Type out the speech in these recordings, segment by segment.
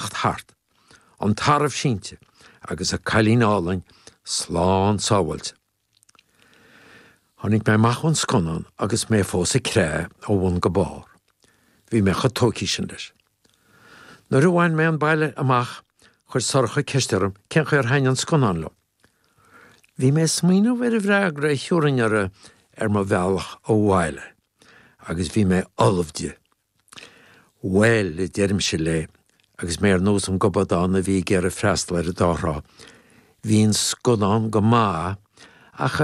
teacht thart, an tarbh sínte agus a cailín álainn slán sábháilte. Tháinig mé amach ón scannán agus mé fós ag creathadh ó bhun go barr. Bhí mé chomh tógtha sin leis. Nuair a bhain mé an baile amach, chuir Sorcha ceist orm cén chaoi ar thaithin an scannán liom. Bhí mé ag smaoineamh ar an bhfreagra a thiúrfainn uirthi ar mo bhealach abhaile agus bhí mé ullamh di. Bhail, a deirimse léi, agus mé ar nós an gobadán a bhí ag iarraidh freastal ar an dá thrá, bhí an scannán go maith, ach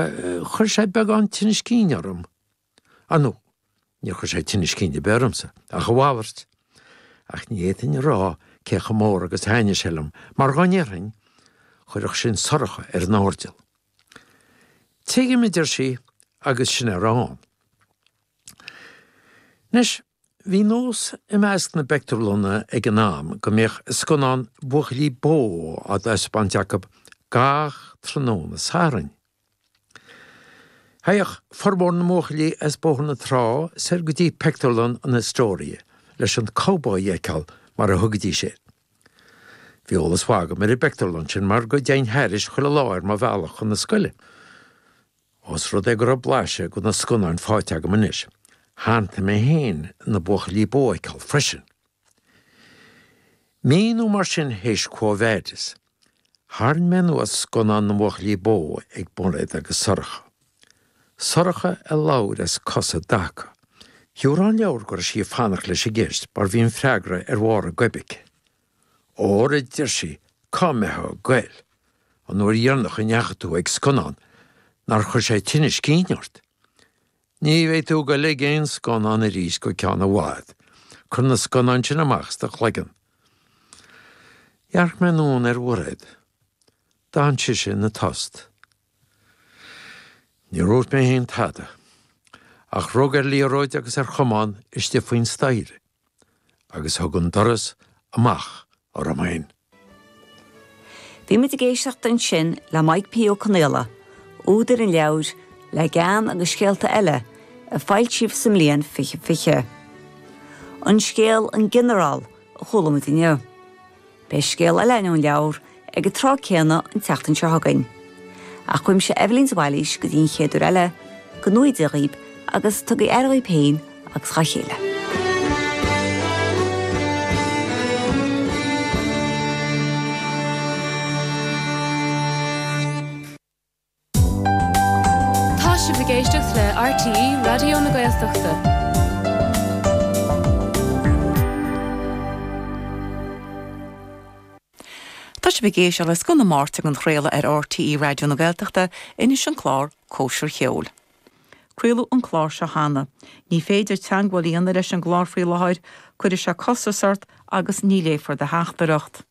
chuir sé beagán tinnis cinn orm. Á no, níor chuir sé tinnis cinn ar bith ormsa, ach a mhalairt. Ach ní fhéadfainn a rá cé chomh mór agus a thaithnigh sé liom, mar dhá ndéarfainn, chuirfeadh sin Sorcha ar an airdeall. Tuigim, a deir sí, agus sin a raibh ann. Anois, bhí nós i measc na bpictiúrlanna ag an am go mbíodh scannán buachaillí bó á thaispeáint acu gach tráthnóna Sathairn. Théadh formhór na mbuachaillí as Bóthar na Trá soir go dtí pictiúrlann an Astoria leis an gcowboy a fheiceáil, mar a thugaidís air. Bhí eolas maith agam ar an bpictiúrlann sin mar go dtéinn thairis chuile lá ar mo bhealach chun na scoile. Ós rud é go raibh blaiseadh de na scannáin faighte agam anois, shantaigh mé féin na buachaillí bó a fheiceáil freisin. Mí nó mar sin théis Quo Vadis, tharraing mé anuas scannán na mbuachaillí bó ag Mairéad agus Sorcha. Sorcha a labhair as cos i dtaca. Thabharfainn an leabhar go raibh sí ag fanacht leis an gceist mar bhí an freagra ar bharr a goib aici. Ara a deir sí cá mbeitheá goil an uair dheirneach a ndeachaigh tú ag scannán nár chuir sé tinnis cinn ort. Ní bheidh tú ag goil ag aon scannán arís go ceann i bhfad. Cuir na scannáin sin amach as do chloigeann. Dhearc mé anonn ar Mhairéad. D'fhan sise ina tost. Níor úirt mé fhéin tada, ach rug ar liathróid agus ar chamán istigh faoin staighre. agus thug an doras amach orm féin. Bhí muid ag éisteacht ansin le Mike P. Ó Conaola, údar an leabhair Le Gean agus Scéalta Eile, a foilsíodh sa mbliain 2020. An scéal 'An Ginearál' a chuala muid inniu. Beidh scéal eile in An Leabhar ag an tráth céanna an tseachtain seo chugainn. Ach uaimse Eibhlín de Bhailís go dtí an chéad uair eile, go ngnóthaí Dia dhaoib agus tugaí aire dhaoib féin agus dhá chéile. Tá sibh ag éisteacht le RTÉ Raidió na Gaeltachta. Tá sibh ag éisteacht le scoth na Máirt á athchraoladh ar RTÉ Raidió na Gaeltachta, anois an clár Cóisir Cheoil. Craoladh an clár seo cheana. Ní féidir teagmháil a dhéanamh leis an gclár faoi láthair, cuirfidh sé costas ort agus ní léifear do theachtaireacht.